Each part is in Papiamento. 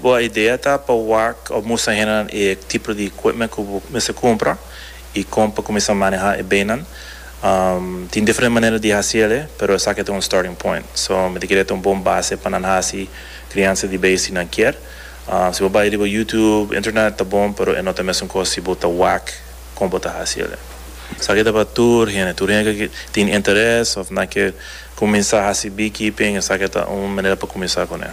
Bo a idea ta pa wak of mustra hendenan e tipo di equipment cu bo mester cumpra y con pa cuminsa maneha e beynan. Tin diferente manera di haci el'e, pero esaki ta un starting point. So, mi ta kere ta un bon base pa nan haci criansa di bey si nan kier. Si bo bay riba YouTube, internet, ta bon, pero e no ta mesun cos si bo ta wak con bo ta haci el'e. Esaki ta pa tur hende. Tur hende cu tin interes of nan kier cuminsa haci beekeeping, esaki ta un manera pa cuminsa cun'e.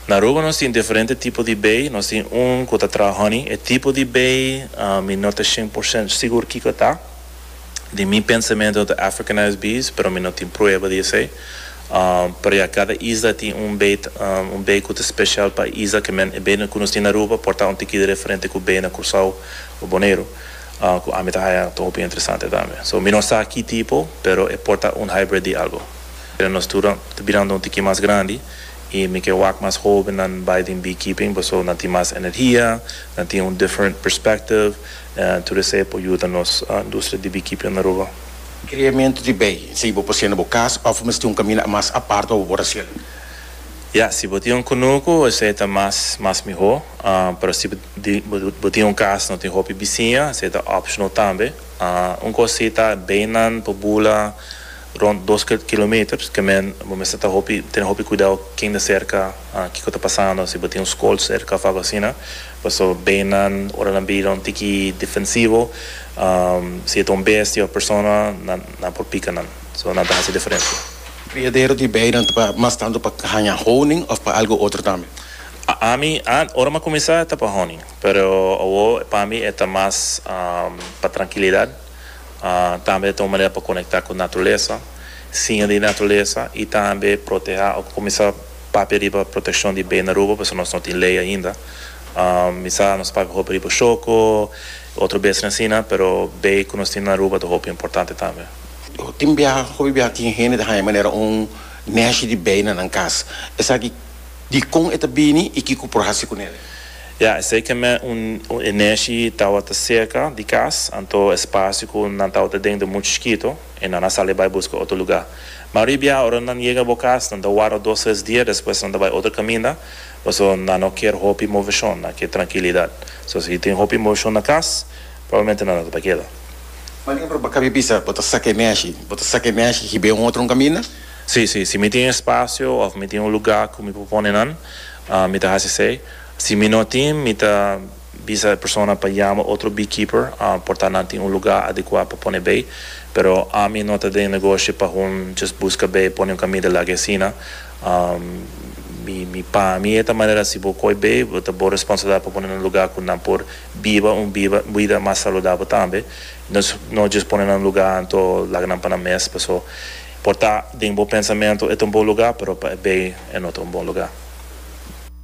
Na Aruba nos tin diferente tipo di bay, nos tin un cu ta traha honey, e tipo di bay mi no ta cien por ciento sigur kico ta, den mi pensamento no ta Africanized bees, pero mi no tin prueba di esey, pero ya cada isla tin un bay un bay cu ta special pa e isla, que men e bay cu nos tin na Aruba por ta un tikida diferente cu bay na Curcao o Boneiru, cu ami ta haya ta hopi interesante tambe, so mi no sa ki tipo, pero e por ta un hybrid di algo, nos tura ta birando un tiki mas grandi. y mi ke wak mas hobennan bay den beekeeping paso nan tin mas energia, nan tin un different perspective, en tur esey por yuda nos industria di beekeeping den Aruba. Creamento di bay, esey bo por haciendo bo cas of mester un camina mas apart wak bo por haciendo? Ya, si bo tin un cunucu esey ta mas mas miho, pero si bo tin un cas no tin hopi bisiña esey ta optional tambe. Un cos si ta baynan por bula. Rond dos kilometer kemen bo mester ta hopi tene hopi kuidou ken ta serka kiko ta pasando si bo tin un skol serka of algu asina paso beinan ora nan bira un tiki defensivo si e ta un bestia of persona nan por pika nan so nan ta hasi diferensia. Criadero di beinan ta mas tantu pa haña honing of pa algu otro tambe? Ami ant ora mi a cuminsa ta pa honing pero awo pa mi e ta mas pa trankilidad. Tambe ta un manera pa konekta ku naturalesa, siña di naturalesa i tambe protehá. Oko ku mi sa papia riba protekshon di bei na Aruba pasobra nos no tin lei ainda. Mi sa nos papia hopi riba shoko i otro besnan asina, pero bei ku nos tin na Aruba ta hopi importante tambe. Tin biaha, hopi biaha tin hende ta haña manera un nèshi di bei na nan kas. Esaki dikon e ta bini i kiko por hasi ku nel? Ya, esei kem'é un e neshi tawata serka di kas, anto e spasio ku nan tawata den ta muchu chikito, i nan a sali bai buska otro lugá. Ma ribia, ora nan yega bo kas, nan ta warda dos tres dia, despues nan ta bai otro kaminda, paso nan no kier hopi moveshon, nan kier trankilidat. So si tin hopi moveshon na kas, probablmente nan no ta pa keda. Por ehemplo, pa kabi bisa, bo ta saka e neshi, bo ta saka e neshi hib'é un otro un kaminda? Sí, sí. Si mi tin e spasio òf mi tin un lugá ku mi por pone nan, mi ta hasi esei. Si mi no tin, mi ta bisa e persona pa yama otro beekeeper, por ta nan tin un lugá adekuá pa pone bei. Pero ami no ta den negoshi pa hun djes buska bei pone un kamida lak e asina. Mi pa mi e ta manera si bo koi bei bo ta bo responsabilidat pa pone nan lugá ku nan por biba un biba bida mas saludabel tambe. No no djes pone nan lugá anto lak nan pa nan mes paso por ta den bo pensamentu e ta un bon lugá pero pa e bei e no ta un bon lugá.